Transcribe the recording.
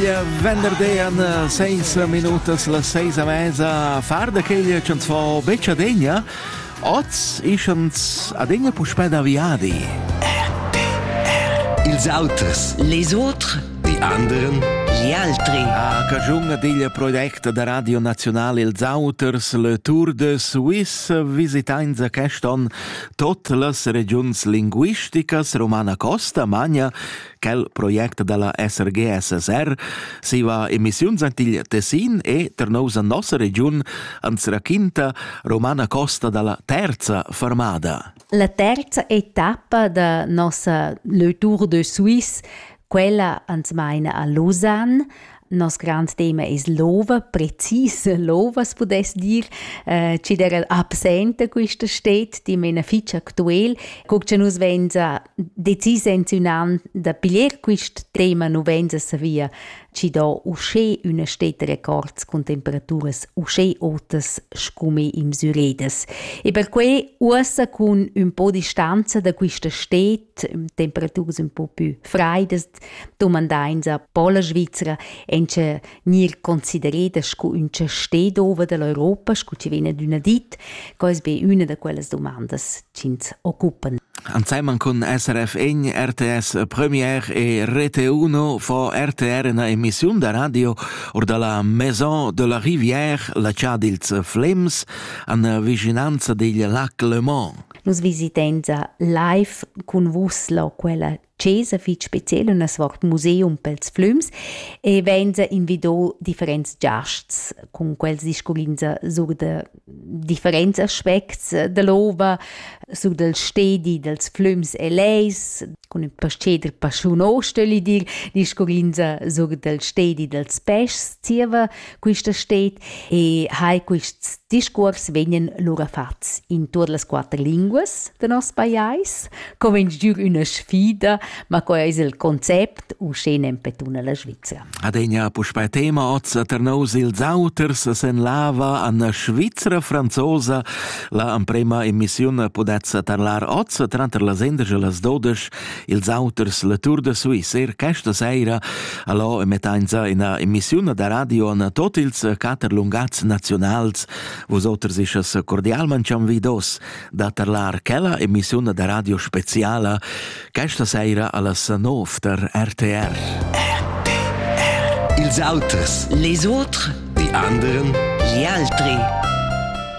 Ja venderdi an seis minutas las seis a mesa far da queglia ch'ans fo betg adegna. Oz ischans adegna puspè da viadi. Ils auters. Les autres. Die anderen. Gli altri. A cagiun ad igl project da Radio National Els Auters, le Tour de Suisse, visitainsa quest on tot las regiuns linguisticas, Romana Costa, Magna, Quel project dalla SRGSSR siva emissiuns ant il Tessin e ter nousa nossa regiun ans raquinta Romana Costa dalla terza fermada. La terza etappa da nossa Le Tour de Suisse quella ans maina a Lausanne, Nos grand tema es l'ova, precis l'ova as pudess dir, eh, chi d'eira absenta quista sted, dimena fich actuel. Co cha nus vainsa decis insinuand da piglier quist tema, nu vainsa savia chi do uschè üna stetta records cun temperaturas uschè otas scume in Syredes. E perque uossa cun ün po distanza da quista sted, temperaturas ün po pü fraidas, dumandainsa po la Svizra encha gnir considereda scu ün chastè d'ova dall'Europa, scu chi vegna d'üna dit, co es be üna da quellas dumandas chi'ns occupan. Anzeiman cun SRF Egn, RTS Premier e Rete 1 fo RTR una emissiun da radio or da la Maison de la Rivière, la cha dils Flems, an vicinanza digl lac Le Mans. Nus visitenza live cun vus, la quella chesa fich speciel üna svart museum pels flüms e vainsa invido differents giasts cun quels discurrinza sur da differents aspects da l'ova, sur dal stedi dals flüms e leis, cun ün pasceder paschuno, stögli dir, discurrinza sur dal stedi dals peschs, zieva Quista stet e hai quists discuors vegnan lura fats in tuot las quatter linguas da nos pajais, co vegn giü üna sfida, ma co ais il concept uschè nempetuna la Svizzera. Adegna puspei tema oz a Ternaus ils auters sen lava an Svizzera franzosa. La emprema emissiun pudetza tarlar oz tranter las 11 e las 12 ils auters la Tour de Suisse. Er questa sera allo emettenza ina emissione da radio an tot ils quatter lungats nazionals. Vos oters ischas cordialmente anvidos da tarlar quella emissione da radio speciala questa sera allas 9 der RTR. Ils auters. Les autres. Die anderen. Gli altri.